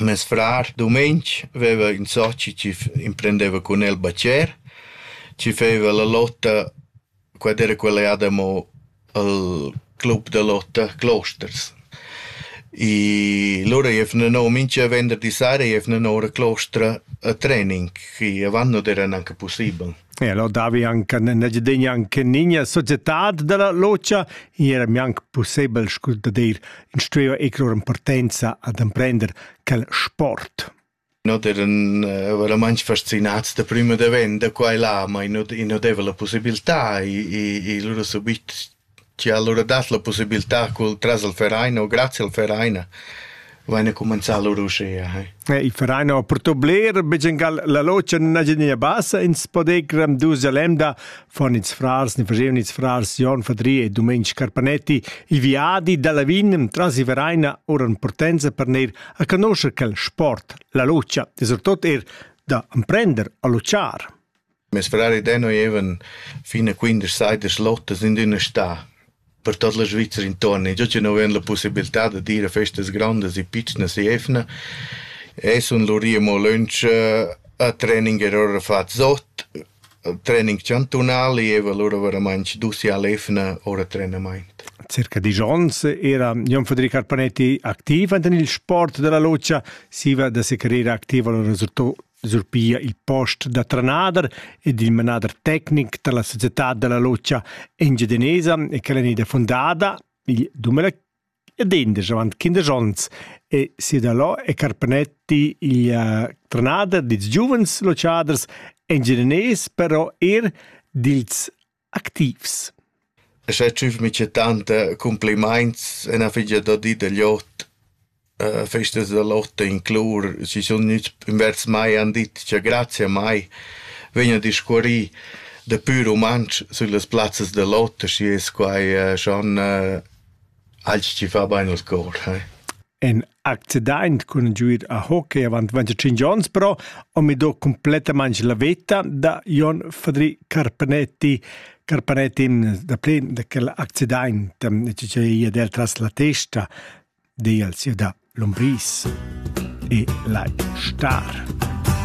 Mes frar dumeng veva ün soci chi emprendeva cun el bacher, chi feva la lotta, quella era quella jada amo al club da lotta Closters. I lura jevna no mincha venderdi sera jevna no ora a Clostra a training, chi avant non era gnanca pussibel. E allora davi anche negidegna anche nigna societad della locia era mi anche possibel scu da dir instruiu e lur importanza ad emprender quel sport. Not eran uh, veramente fascinats da prima da vent da qua e là, ma i non, i non deva la possibilità, i, i, i loro subit Chi ha alura dat la pussibiltà cul tras al Verein o grazia al Verein vaina cumanzà lur uschea. Eh, il Verein ho purtò bler, bigiangal la logia nun haja nia bassa ins podegram dusa lemda von ins frars, ni fagevan ins frars Jon Fadri e Dumenic Carpanetti, i viadi da Lavin tras i Vereina oran portenza per neir a conoscer quel sport, la logia, e surtot er da amprender a luciar. Mes frari Deno evan fin a quindesch saidas lottas in üna stà per tot la Svizra intuorn e giò chi nu vain la pussibiltà da dir a festas grondas e pitschnas e evna e sun lurì amo lönch a training er ora fat sot, training chantunal e eva lura varamaing dus i all evna ora trenamaint. Circa disch ons era Jon Federic Arpanetti activ enten il sport della locia, siva da secarera activa lo resultò sur pia il post da trenader ed il manader tecnic dalla societad dalla lotscha engiadinesa e che è ida fundada il 2000 ed endisch avant quindesch onns e Sidalò e Carpanetti il uh, trenader dils giuvens lotschaders engiadinés però er dils activs. E sche tschüf micha tanta cumplimaints üna figlia da di da Lot, festas da Lotta in Clor, chi sun gnüts invers mai e han dit cha grazia mai vegnan a discuorrir da pür rumantsch süllas plazzas da Lotta, schi es quai schon alch chi fa bain al cor. accidaint cun giuir a hockey avant 25 ons però ho mi do cumplettamaing la veta da Jon Fadri Carpanetti Carpanetti in da plen da quel accidaint che ia del tras la testa del sia da Lombris e la Star.